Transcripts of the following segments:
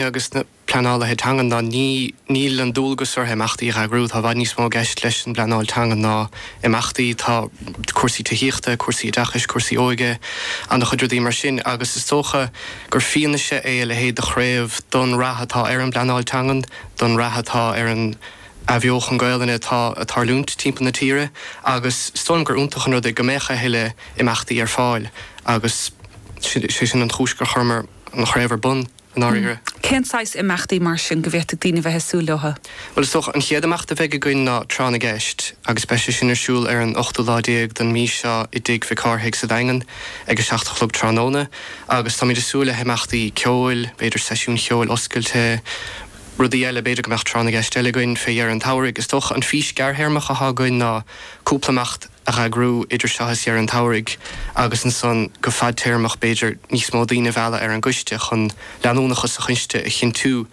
agus na pleanálaithe teangan ná níl an dualgas orthu imeachtaí a eagrú. Tá i bhfad níos mó i gceist leis an bpleanáil teangan ná imeachtaí. Tá cúrsaí tithíochta, cúrsaí oideachais, cúrsaí óige, ana chuid rudaí mar sin agus is dócha gur fianaise é a leithéid de chraobh don rath atá ar an bpleanáil teangan, don rath atá ar an athbheochan Gaolainne atá ag tarlúint timpeall na tíre agus is dóigh liom gur iontach an rud é go mbeadh a thuilleadh imeachtaí ar fáil agus sé sin an chúis gur chuireamar an chraobh ar bun. i ndáiríre. Cén saghas imeachtaí mar sin go bhféadfadh daoine bheith ag súil leotha? Bhuel is dócha, an chéad imeacht a bheidh againn ná Tráth na gCeist agus beidh sé sin ar siúl ar an ochtú lá déag don mí seo i dTigh Mhic Cárthaigh sa Daingean ag a seacht a chlog tráthnóna agus táimid ag súil le himeachtaí ceoil, b'fhéidir seisiún ceoil oscailte, rudaí eile, b'fhéidir go mbeadh Tráth na gCeist eile againn fé dheireadh an tsamhraidh. Is dócha an fís gearrthéarmach athá againn ná cúpla imeacht. a eagrú idir seo is deireadh an tsamhraidh agus ansan go fadtéarmach b'fhéidir níos mó daoine a mhealladh ar an gcoiste chun leanúnachas sa choiste a chinntiú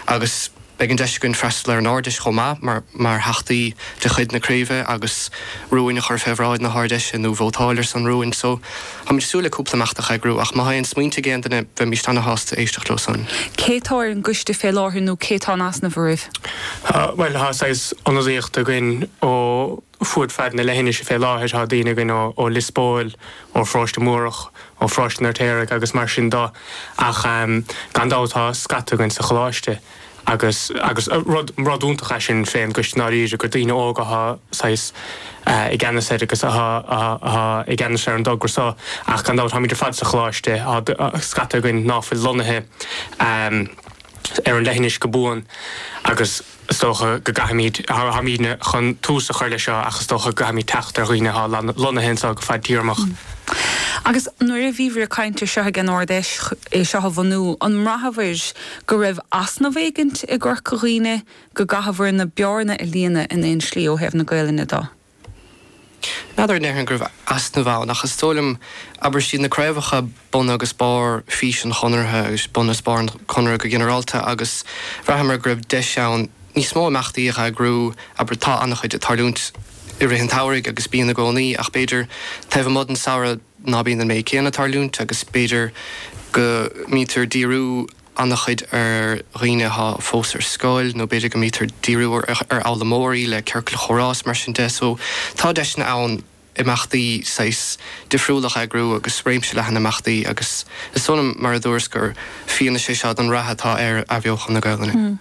agus beidh an deis againn freastal ar an Ard Fheis chomh maith mar theachtaí de chuid na craoibhe agus rúin a chur fé bhráid na hArd Fheise nó vótáil ar son rúin so táimid ag súil le cúpla imeacht a eagrú ach má thá aon smaointe ag aon duine bheimíst ana shásta éisteacht leo san. Cé tá ar an gcoiste fé láthair nó cé tá in easnamh oraibh? Bhuel tá saghas ionadaíocht againn ó. fud fad na leithinise fé láthair. Tá daoine againn ó Lios Póil, ó Pharóiste Múrach, ó Pharóiste an Fheirtéaraigh agus mar sin de ach gan dabht tá scata againn sa choláiste agus agus rud iontach as sin fén gcoiste ndáiríre gur daoine óga atá saghas i gceannas air agus atá atá i gceannas ar an dtogra so ach gan dabht táimid ar fad sa choláiste tá scata againn ná fuil lonnaithe ar an leithinis go buan agus Is dócha go gcaithfimid, táimidne chun tús a chur leis seo ach is dócha go gcaithfimid teacht ar dhaoine atá lonnaithe anseo go fadtéarmach. Agus nuair a bhíobhair ag caint air seo ag an Ard Fheis é seo a bhunú, an mbraitheabhair go raibh easnamh éigint i gCorca Dhuibhne, go gcaitheabhair an bhearna a líonadh in aon slí ó thaobh na Gaelainne do? N'fheadar a ndéarfainn go raibh easnamh ann, ach is dóigh liom, abair, siad na craobhacha bun agus barr fís an Chonartha agus bun is barr an Chonradh go ginearálta agus bhraitheamar go raibh deis ann níos mó imeachtaí a eagrú, abair, tá ana-chuid ag tarlúint i rith an tsamhraidh agus bíonn i gcónaí ach b'fhéidir taobh amuigh den samhradh ná bíonn an méid céanna ag tarlúint agus b'fhéidir go mbítear díriú ana-chuid ar dhaoine atá fós ar scoil nó b'fhéidir go mbítear díriú ar fhoghlaimeoirí le ciorcail chomhrá is mar sin de so tá deiseanna ann imeachtaí saghas difriúil a eagrú agus réimse leathan imeachtaí agus is dóigh liom mar a dúras gur fianaise é seo don rath atá ar athbheochan na Gaolainne.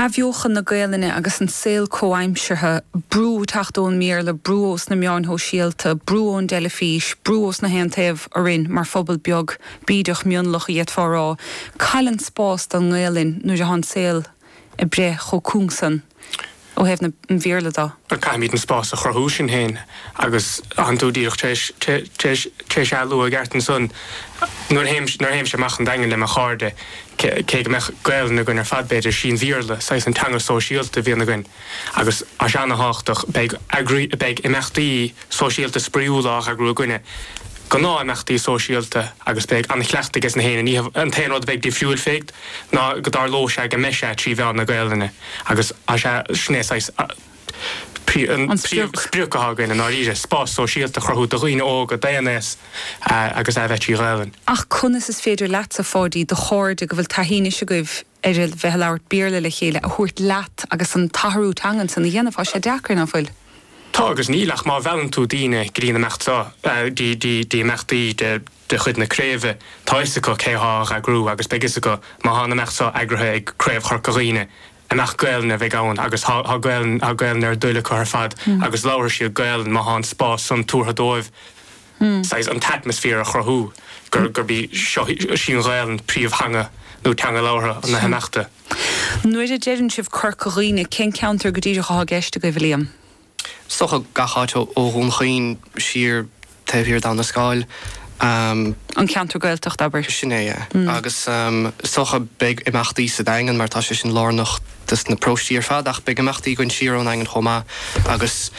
Athbheochan na Gaelainne agus an saol comhaimseartha, brú ag teacht ón mBéarla, brú ós na meáin shóisialta, brú ón dteilifís, brú ós na haon taobh orainn mar phobal beag bídeach mionlach a d'fhéadfá a rá, cá bhfuil an spás don nGaelainn nuair atá an saol ag éirí chomh cúng san. ó thaobh an Bhéarla de. Caithfimid an spás a chruthú sinn féin agus tá tú díreach tar éis tar éis tar éis é a lua i gceart ansan nuair a théim nuair a théimse amach sa Daingean le mo chairde cé cé go mbeadh Gaolainn againn ar fad b'fhéidir sé an Béarla saghas an teanga sóisialta a bhíonn againn agus tá sé ana-thábhachtach beidh eagraí beidh imeachtaí sóisialta spraíúla á heagrú againne gnáth imeachtaí sóisialta agus beidh ana-chleachtadh aiges na héinne is an t-aon rud a bheidh difriúil fé ná go dtarlóidh sé go mbeidh sé trí mheán na Gaolainne. Agus is é sin é saghas an príomh sprioc atá againn i ndáiríre, spás sóisialta a chruthú do dhaoine óga, d'aon aos agus a bheith trí Ghaelainn. Ach conas is féidir leatsa, Pháidí, do chairde go bhfuil taithí anois agaibh ar a bheith ag labhairt Béarla le chéile a thabhairt leat agus an t-athrú teangan san a dhéanamh? Tá sé deacair, nach bhfuil? Tá agus níl ach má mheallann tú daoine go dtí an imeacht seo, dtí imeachtaí de. de chuid na craoibhe, tá fhios acu cé thá á eagrú agus beidh fhios acu má thá an imeacht so eagraithe ag Craobh Chorca Dhuibhne gur imeacht Gaelainn a bheidh ann agus thá Gaelainn thá Gaelainn ar a dtoil acu ar fad agus labharfaidh siad Gaelainn má thá an spás san tabhartha dóibh saghas an t-atmosphere a chruthú gur gurb í seo sí an Ghaelainn príomh theanga nó teanga labhartha na himeachta. Nuair a deireann sibh Corca Dhuibhne cén ceantar go díreach athá i gceist agaibh, a Liam? Is dócha gach áit ó Dhún Chaoin siar, taobh thiar d'Abha na Scáil. An ceantar Gaeltachta, abair. Sin é, yeah. Agus is dócha beidh imeachtaí sa Daingean mar tá sé sin lárnach dos na paróistí ar fad ach beidh imeachtaí againn siar ón Daingean chomh maith agus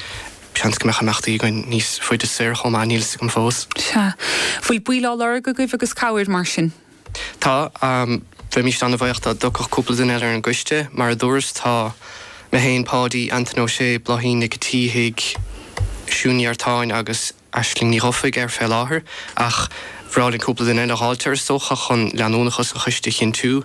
seans go mbeadh imeachtaí againn níos faide soir chomh maith, níl 'fhios agam fós. Sea. Bhfuil baill á lorg agaibh agus cabhair mar sin? Tá, am, bheimis ana-bhuíoch dá dtiocfadh cúpla duine eile ar an gcoiste. Mar a dúras, tá mé féin, Páidí, Antain Ó Sé, Bláithín Nic a tSíthigh, Siún Ní Artáin agus Aisling Ní Dhufaigh air fé láthair, ach bhreá linn cúpla duine eile a dh'fháilt air, is dócha, chun leanúnachas an choiste a chinntiú